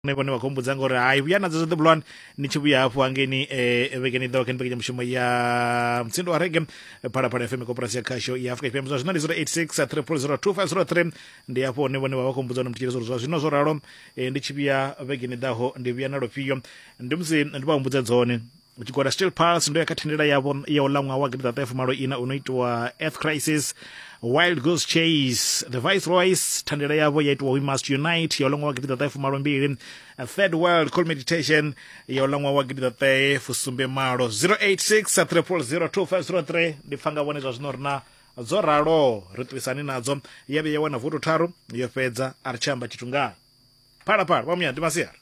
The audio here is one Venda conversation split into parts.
vhone vhone vha khou mbudza ngori hai vhuya nadzo zwoṱhe bulwani ni tshi vhuya hafhu hangeni um eh, vhekeni ḓaho kha ni mbekanyamushumo ya mutsindo wa rege phalaphala fm koporasi ya khasho ya afrika tshipembe zwa zwino ndi 086 300 ndi hafho hone vhone vha vha khou mbudza hone mutshitshele zwa zwino zwo ralo eh, ndi tshi vhuya vhekeni ḓaho ndi vhuya na lufhio ndi musi ndi vha humbudza dzone tshigwada steel pulse ndo ya kha thendela yavho ya u ḽa ṅwaha wa gidiḓaṱahe fumalo ina uno itiwa earth crisis wild goose chase the viceroys thandela yavho ya itiwa we must unite ya u ḽa ṅwaha wa gidiḓaṱahe fumalo mbili third world call meditation ya u ḽa ṅwaha wa gidiḓaṱahe fusumbe malo 086 3002503 ndi pfa nga vhone zwa zwino ri na dzo ralo ri ṱuwisani nadzo ya vhe ya wana voto tharu yo fhedza a ri tshi amba tshithu ngayo phalaphala vha muya ndi masiari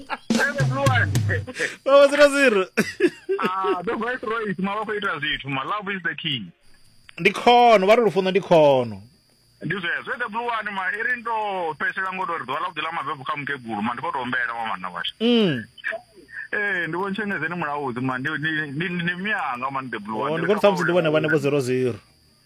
vhavha dzula zero ah, the right right mavha khou ita zwithu ma love is the key ndi khono vha ri lufuno ndi khono ndi zwezwo the blue one ma iri ndo fhesela ngo tori ḓuvha ḽa vhuḓi ḽa mabebu kha mukegulu ma ndi khou tou ombela wa manna washu mm. ee eh, ndi vhontshengezeni mulaudzi ma ndi mianga ma ndi the blue one ndi khou tou ṱhamusi ndi vhone vhane vho zero zero